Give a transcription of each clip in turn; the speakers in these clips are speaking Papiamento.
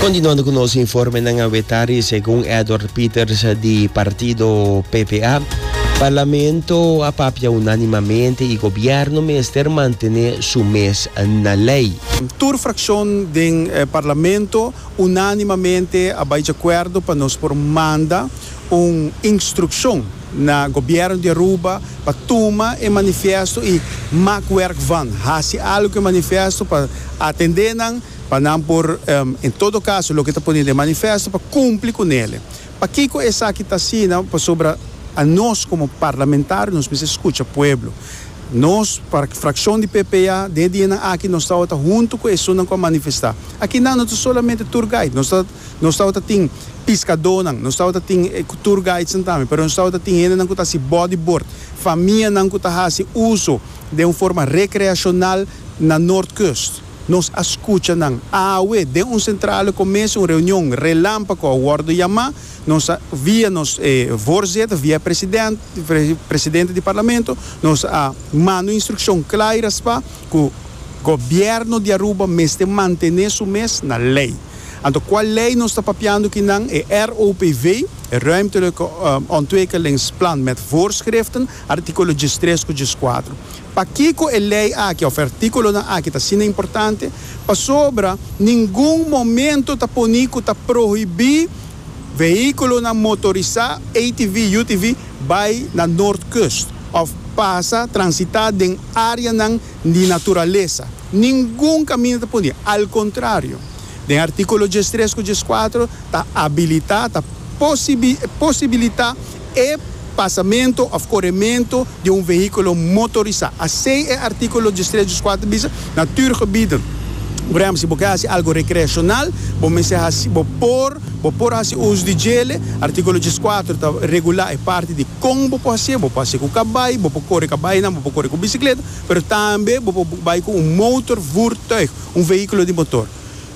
Continuando cu nos informenan a wetari segun Edward Pieters di partido PPA, Parlamento a papia unanimamente y gobierno mester mantene su mes na ley. Tur fraccion den Parlamento unanimamente a bay djacuerdo pa nos por manda un instruccion. na Gobierno di Aruba pa tuma e manifiesto y mak werk van, haci algo cu e manifiesto pa atende nan, pa nan por en todo caso loke ta pone den e manifiesto pa cumpli cu nele. Pakico esaki ta asina? Pasobra a nos como parlamentario nos mester scucha pueblo. Nos fraccion di PPA den e dianan aki nos tawata hunto cu esunnan cu a manifesta. Aki nan no ta solamente tour guide, nos ta. Nos tabata tin piskadónan, nos tabata tin tour guidesnan tambe, pero nos tabata tin hendenan ku ta hasi bodyboard, famianan ku ta hasi uso den un forma rekreashonal na Noordkust. Nos a skucha nan. Awe, den un sentrale komes, un reunion relámpako a wòrdu yamá, nos a, via nos voorzitter, via e president, presidente di parlamento, nos a manda un instrukshon kla i raspá, ku Gobièrnu di Aruba mester mantené su mes na lei. Anto kua lei nos ta papiando ki nan? E ROPV, e Ruimtelijke Ontwikkelingsplan met voorschriften, artíkulo djistres ku djiskuater. Pakiko e lei aki òf e artíkulonan aki ta asina importante? Pasobra ningun momento ta poni ku ta prohibí Vehiculonan motorisá, ATV, UTV, bai na Noordkust of pasa, transitá, den areanan di naturalesa. Ningun caminda ta puni. Al contrario, den articulo djestres cu djescuatro ta abilitá, ta posibilitá, E pasamento of coremento di un vehiculo motorisa. Asey e articulo Distrito Squater bisa, Natuurgebieden. Por ehempel, si bo kier haci algo recreacional, bo mester haci, bo por, bo por haci uso di djele. Articulo djes cuater ta regula e parti di con bo por hacié. Bo por hacié cu cabai, bo por core cabainan, bo por core cu bicicleta, pero tambe bo por bai cu un motorvoertuig, un vehiculo di motor.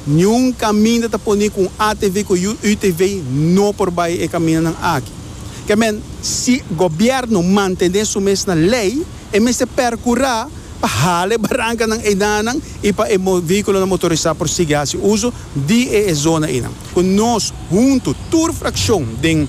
Niun caminda ta poni cu un ATV cu yu UTV no por bay e camindanan aki. Ke men, si gobierno mantene su mes na ley, e mester percura pa hala e barancanan einanan y pa e vehiculonan motorisa por sigui haci uzo di e e zona einan. Cu nos hunto, tur fraccion den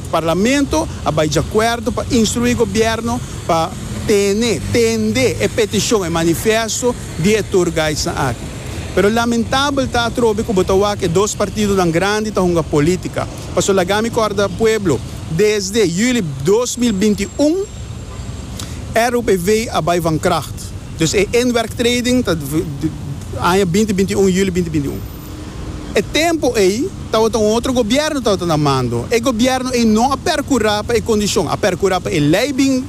Parlamento a bay djacuerdo pa instrui gobierno pa tene, tende e peticion, e manifesto, di e tour guidesnan aki. Pero lamentabel ta atrobe ku bo ta wak e dos partidonan grandi ta hunga polítika. Paso laga mi kòrda pueblo, desde juli dos mil binti i un e RUPV a bai van kracht. Dus e inwerktreding ta aña binti binti i un, juli binti binti i un. E tempu ei tabata un otro gobièrnu tabata na mando. E gobièrnu ei no a perkurá pa e kondishon. A perkurá pa e lei bin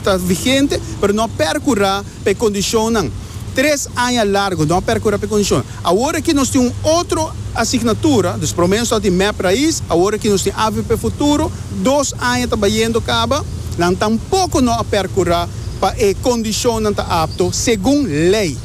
ta vigente, pero no a perkurá. p'e condicionnan. Tres aña largo no a percura p'e condicionnan. Awor aki nos tin un otro asignatura, dus prome nos tabatin mep raiz, awor aki nos tin avp futuro, dos aña ta bayendo caba, nan tampoco no a percura pa e condicionnan ta apto segun ley.